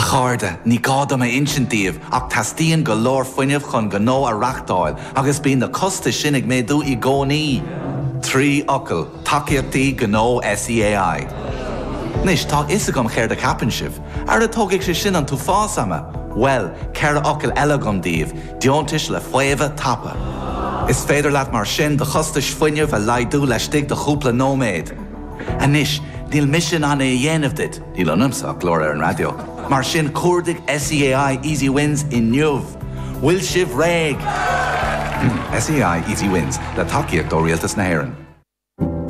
A chairde, ní gá dom a insint daoibh ach teastaíonn go leor fuinnimh chun gnó a reachtáil agus bíonn na costais sin ag méadú i gcónaí! Trí fhocal, Tacaíochtaí Gnó SEAI. Anois, tá a fhios agam chéard a cheapann sibh. Ara tógfaidh sé sin an t-uafás ama! Bhuel, ceithre fhocal eile agam daoibh, Deontais le Faomhadh Tapa. Is féidir leat mar sin do chostais fuinnimh a laghdú laistigh de chúpla nóiméad. Anois, níl mise in ann é a dhéanamh duit, níl ionamsa ach glór ar an raidió, mar sin cuardaigh SEAI Easy Wins inniu! Bhfuil sibh réidh? SEAI Easy Wins, le tacaíocht ó Rialtas na hÉireann.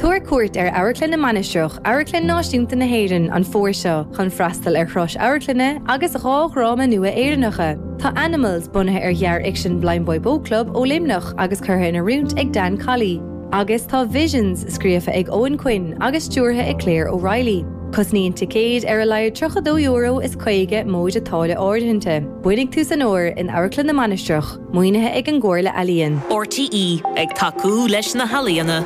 Tabhair cuairt ar Amharclann na Mainistreach, Amharclann Náisiúnta na hÉireann, an fómhar seo chun freastal ar chrois amharclainne agus dhá dhráma nua Éireannacha. Tá Animals, bunaithe ar ghearrfhicsean Blindboy Boatclub ó Luimneach agus curtha in oiriúint ag Dan Colley, Agus tá Visions scríofa ag Eoin Quinn agus stiúrtha ag Claire O'Reilly. Tosnaíonn ticéid ar a laghad €13 is caoga móide táille áirithinte. Beidh tús an fhómhair in Amharclann na Mainistreach. Maoinithe ag an gComhairle Ealaíon. RTÉ, ag tacú leis na healaíona.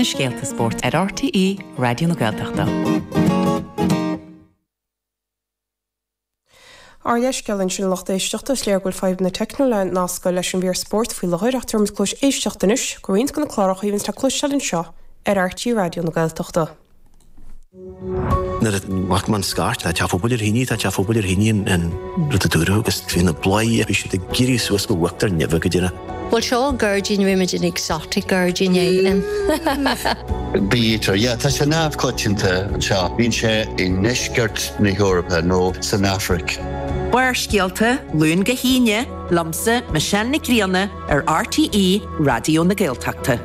na scéalta spóirt ar RTÉ Raidió na Gaeltachta. Ár leithscéal ansin lucht éisteachta, is léir go bhfuil fadhbanna teicniúla ag nascadh leis an bhfear spóirt faoi láthair ach tabharfaimid cluas éisteachta anois do roinnt de na cláracha a bhíonns le cloisteáil anseo ar RTÉ Raidió na Gaeltachta. Nuair a chuaigh an scairt tá teach phobail ar thine tá teach phobail ar thine an rud a dúradh agus trí na bladhairí a bhí siad ag iarraidh suas go bhfactar nimhe go deireadh. Bhuel, seo gairdín rímid in exotic gairdín éigin. Bítear, yeah, tá sé neamhchoitianta anseo. Bíonn sé i ndeisceart na hEorpa nó san Afraic. Barrscéalta, Luan go hAoine, liomsa, Michelle Nic Grianna, ar RTÉ Raidió na Gaeltachta.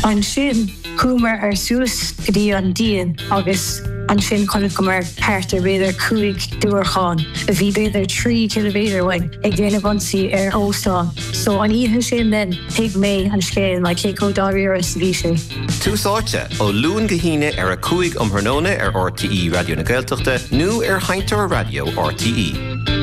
Ansin chuamar suas go dtí an díon agus ansin chonaiceamar thart ar b'fhéidir cúig diúracán a bhí b'fhéidir trí ciliméadar uainn ag déanamh ionsaí ar óstán. So an oíche sin then thuig mé an scéal like cé chomh dáiríre is a bhí sé. Tús Áite, ó Luan go hAoine ar a 5 um thráthnóna ar rte Raidió na Gaeltachta nó ar sheinnteoir raidió rte.